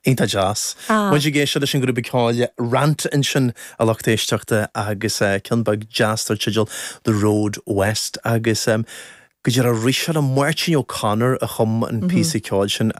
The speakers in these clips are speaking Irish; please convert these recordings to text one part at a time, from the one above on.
Iontach deas. Muid ag éisteacht leis an ghrúpa ceoil Rant ansin a lucht éisteachta agus ceann beag deas dar teideal The Road West agus go dearfa arís eile Máirtín O'Connor a chum an píosa ceoil sin.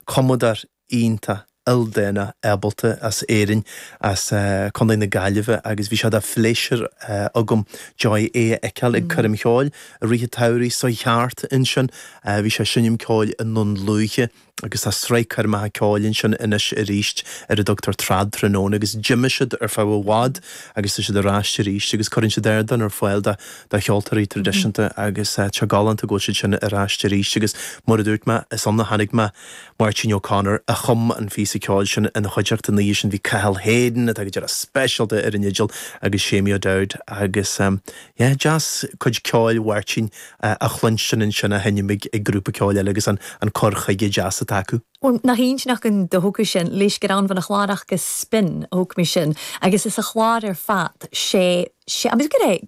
Cumadóir iontach ildánach ábalta as Éirinn, as Contae na Gaillimhe agus bhí sé de phléisiúr agam, domh é a fheiceáil ag coirm cheoil i rith an tsamhraidh seo thart ansin. Bhí sé ag seinm ceoil i nDún Lúiche agus tá sraith coirmeacha ceoil ansin anois arís ar a dtugtar Trad Tráthnóna agus d'imigh siad ar feadh i bhfad agus tá siad ar ais arís agus cuireann siad ardán ar fáil do cheoltóirí traidisiúnta agus tá sé galánta go bhfuil siad sin ar ais arís agus mar a dúirt mé, is ann a chonaic mé. Máirtín O'Connor a chum an phíosa ceoil sin ina chuideachta an lá sin bhí Cathal Hayden atá go dearfa speisialta ar an fhidil agus Seamie O'Dowd agus yeah deas cuid ceoil Mháirtín a chluinstin ansin á sheinm ag grúpa ceoil eile agus an cur chuige deas atá acu. Bhuel, nach aoibhinn ach an dóchas sin, Laois gur ann bhon a' chlàr aca Spin a thog mi sin agus is a chlár ar fad, sé, sé, agus go raibh,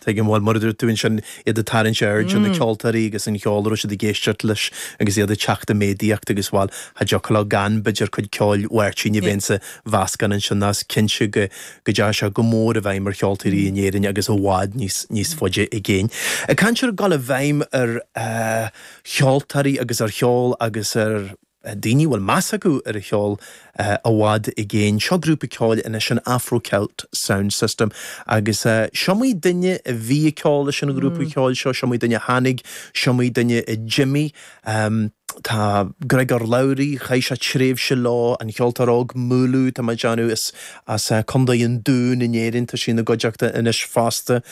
Tuigim, bhuel mar a dúirt tú ansin iad ag tarraingt aird ar na ceoltóirí agus an cheol a raibh siad ag éisteacht leis agus iad ag teacht i méadaíocht agus, bhuel, cha dtiocfadh leo gan, b'fhéidir, cuid ceoil Mháirtín a bheith insa mheascán ansin nó is cinnte go dteachaigh sé go mór i bhfeidhm ar cheoltóirí in Éirinn agus i bhfad níos faide i gcéin. Ag caint ar dhul i bhfeidhm ar cheoltóirí agus ar cheol agus ar. daoine a bhfuil meas acu ar a cheol i bhfad i gcéin. Seo grúpa ceoil anois, an Afro Celt Sound System, agus is iomaí duine a bhí ag ceol leis an ghrúpa ceoil seo, is iomaí duine a tháinig, is iomaí duine a d'imigh. Tá Griogair Labhruidh, chaith sé tréimhse leo, an cheoltóir óg Múlú, tá mé ag déanamh, as Contae an Dúin in Éirinn, tá sí ina gcuideachta anois fosta.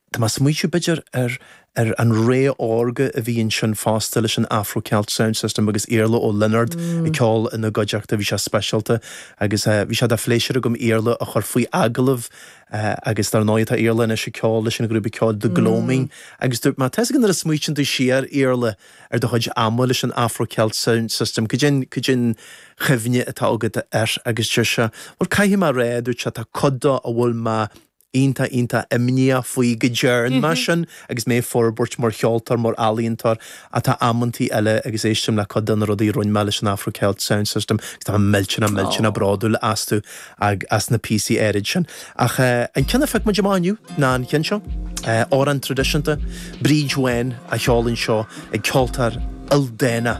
Tá mé ag smaoitiú, b'fhéidir, ar ar an ré órga a bhí ansin fosta leis an Afro Celt Sound System agus Iarla Ó Lionáird ag ceol ina gcuideachta, bhí sé speisialta agus bhí sé de phléisiúr agam Iarla a chur faoi agallamh agus dar ndóigh tá Iarla anois ag ceol leis an ghrúpa ceoil The Gloaming agus dúirt mé, tá 'fhios agat nuair a smaoitíonn tú siar, Iarla, ar do chuid ama leis an Afro Celt Sound System, cad é an, cad é an chuimhne atá agat air agus deir sé, bhuel, caithfidh mé a rá, dúirt sé, tá cuid de a bhfuil mé iontach iontach imníoch faoi go dtearn mé sin agus mé ag forbairt mar cheoltóir, mar ealaíontóir ach tá amantaí eile agus éistim le cuid de na rudaí a rinn mé leis an Afro Celt Sound System agus tá mé millteanach millteanach bródúil astu agus as na píosaí áirid sin. Ach an ceann a phioc muid amach inniu ná an ceann seo, amhrán tradisiúnta, Bríd Bhán á cheol anseo ag ceoltóir ildánach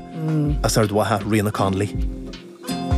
as Ard Mhacha, Ríoghnach Connolly.